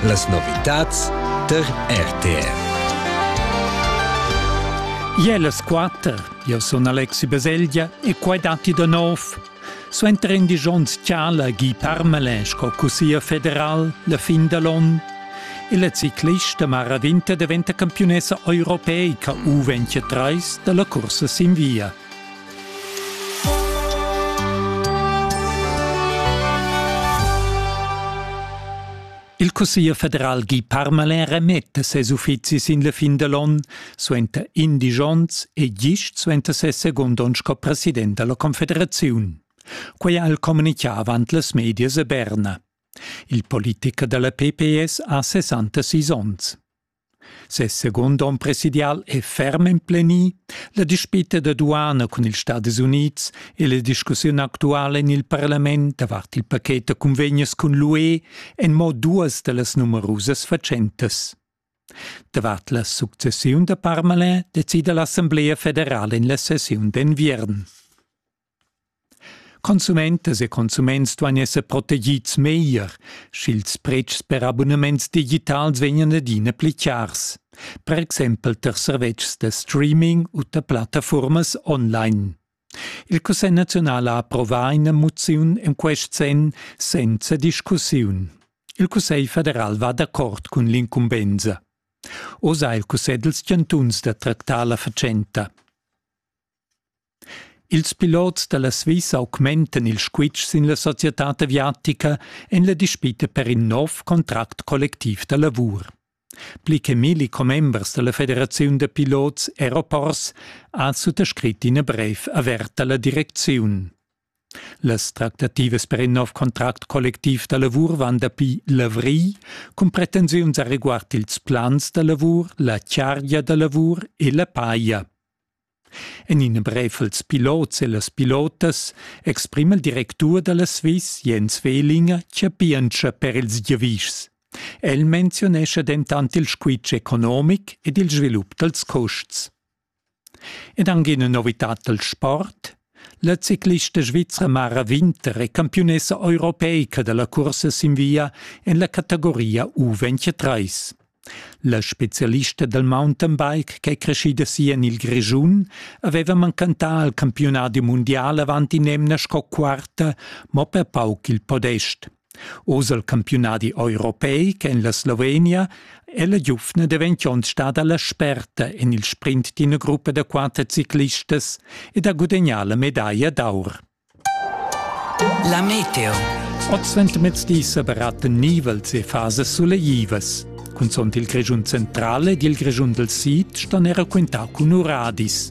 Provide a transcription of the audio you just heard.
Las novitads tar RTR. Ie las quatter, io sun Alexi Baselgia e quai datti da nov. Suenter in disch onns tschala Guy Parmelin sco cussier federal la fin da l'on. E la ciclista Mara Winter diventa campiunessa europeica U23 da la cursa sin via. Il Cussegl federal Guy Parmelin remette ses uffizis in la fin dell'on suenter indisch onns e gist suenter ses secund onn sco president della Confederaziun. Quei ha el communicà avant las medias a Berna. Il politiker della PPS ha 66 onns. Ses secund onn presidial è ferm emplenì. La dispita da duana cun ils Stadis Unids e la discussiun actuala en il parlament davart il paket da cunvegnas cun l'UE èn mo duas da las numerusas fatschentas. Davart la successiun da Parmalin decida l'Assamblea federala en la sessiun d'enviern. Consumentas e consuments duain esser protegids meglier, sch'ils pretschs per abunaments digitals vegnan adina pli chars, per exempel tar servetschs da streaming u tar plattafurmas online. Il Cussegl naziunal ha approvà ina moziun en quest senn senza discussiun. Il Cussegl federal va d'accord cun l'incumbensa. Oz ha il Cussegl dals chantuns da tractar la fatschenta. Ils pilots da la Svizra augmentan il squitsch sin la societad aviatica en la dispita per in nov contract collectiv da lavur. Pli che milli commembers da la Federaziun da pilots Aeroports ha suttascrit ina brev averta la direcziun. Las tractativas per in nov contract collectiv da lavur van dapi l'avrigl cun pretensiuns a reguard ils plans da lavur, la chargia da lavur e la paia. En in brev als pilots e las pilotas exprima il directur da la Swiss Jens Wehlinger chapientscha per ils giavischs. El menzionescha dentant il squitsch economic ed il svilup dals custs. Ed anche ina novità dal sport. La ciclista svizra Mara Winter è campiunessa europeica da la cursa sin via en la categoria U23. La spezialista dal mountainbike ch'è creschida si en il Grischun aveva mancantà al campiunadi mundial avant in'emna sco quarta, mo per pauc il podest. Oz el campiunadi europeic en la Slovenia è la giuvna daventond stada la sperta en il sprint d'ina gruppa da quatter ciclistas ed ha gudagnà la medaglia d'aur. La meteo. Oz ventermezdi sa baratten nivels e fasas suleivas. Cunzont il Grischun centrale ed il Grischun del Sid ston era quintar cun uradis.